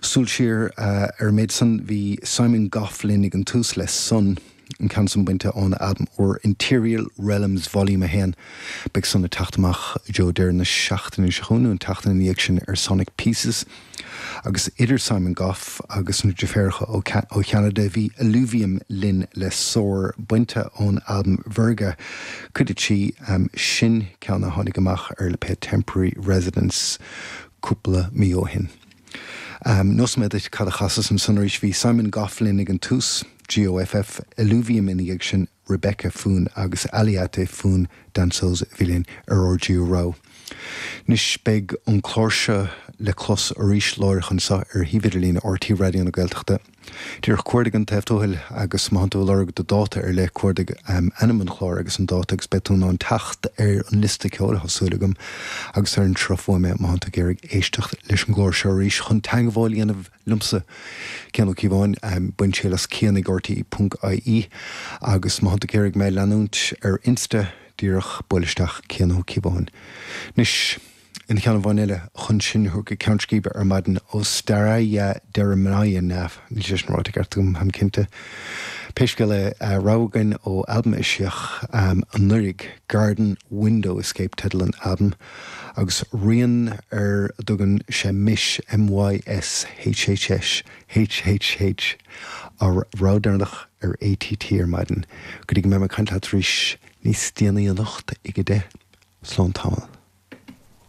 Súil siar ar an méid san, bhí Simon Goff linn ag an tús le Sun, an ceann san bainte óna albam úr Interial Realms Volume 1. Beidh Sun ag teacht amach i dtreo deireadh na seachtaine seo chugainn nó an tseachtain ina dhiaidh sin ar Sonic Pieces. Agus idir Simon Goff agus na driféaracha ó Cheanada, bhí Eluvium linn le Soar, bainte ón albam Virga, cuid a trí. Sin ceann a tháinig amach ar lipéad Temporary Residence. cúpla mí ó shin. Neosfaidh mé duit cad a chasas ansan arís. Bhí Simon Goff linn ag an tús, GOFF, Eluvium ina dhiaidh sin, Rebecca Foon agus Aliayta Foon-Dancoes a bhí linn ar ár dtríú rogha. Anois beidh an clár seo le clos arís, láithreach anseo ar shuíomh idirlíne RTÉ Raidió na Gaeltachta. Díreach cuardaigh an Taobh Tuathail agus má thánn tú ag lorg do dáta ar leith cuardaigh ainm an chláir agus an dáta agus beidh tú in ann teacht ar an liosta ceoil tá súil agam agus ar an sruth fuaime má thánn tú ag iarraidh éisteacht leis an gclár seo arís chun teangmháil a dhéanamh liomsa Cian Ó Cíobháin bain triail as Cian ag RTÉ.ie agus má thánn tú ag iarraidh mé a leanúint ar insta díreach buail isteach Cian Ó Cíobháin anois. aon cheann amháin eile chun sinn a thabhairt go ceann scríbe ar maidin, ó Staraya Derevnya, níl sé sin ráite i gceart agam, táim cinnte. Pé scéal é, rogha againn ó albam a eisíodh anuraidh, Garden Window Escape teideal an albaim, agus rian ar a dtugann sé Mis, M-y-s-h-s-h-h-h-h, ár rogha deireanach ar ATT ar maidin, go dtí go mbeidh mé ag caint leat arís níos déanaí anocht ag a deich. Slán tamall.